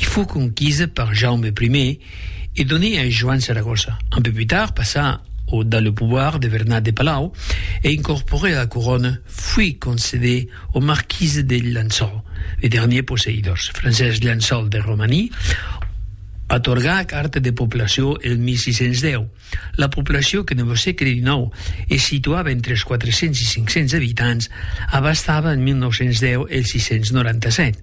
I fou conquisa per Jaume I e doné a Joan Saragossa. Un peu pus tard passa au dans le pouvoir de Vernat de Palau e incorporé a la corona fui concedé au marquis de Llençol, le dernier posseïdors. Francesc Llençol de Romani atorga la carta de poblacion el 1610. La poblacion que ne vos seque de Dinau e situava entre es 400 e 500 abitants abastava en 1910 els 697.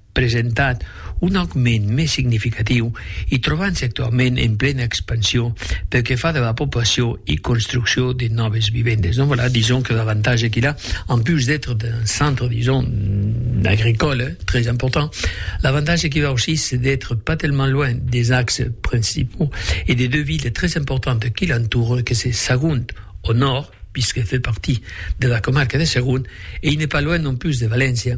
presentat un augment mès significatiu e trobant-se actualament en plena expansiu pel que fa de la poblacion e construccion de nòves vivendes. Donc voilà, dison que l'avantatge qu'il a, en plus d'être d'un centre, dison, agricole, très important, l'avantatge qu'il a aussi, c'est d'être pas tellement loin des axes principaux et des deux villes très importantes qui l'entourent, que c'est Sagunt, au nord, puisqu'elle fait partie de la comarque de Sagunt, et il n'est pas loin non plus de Valencia,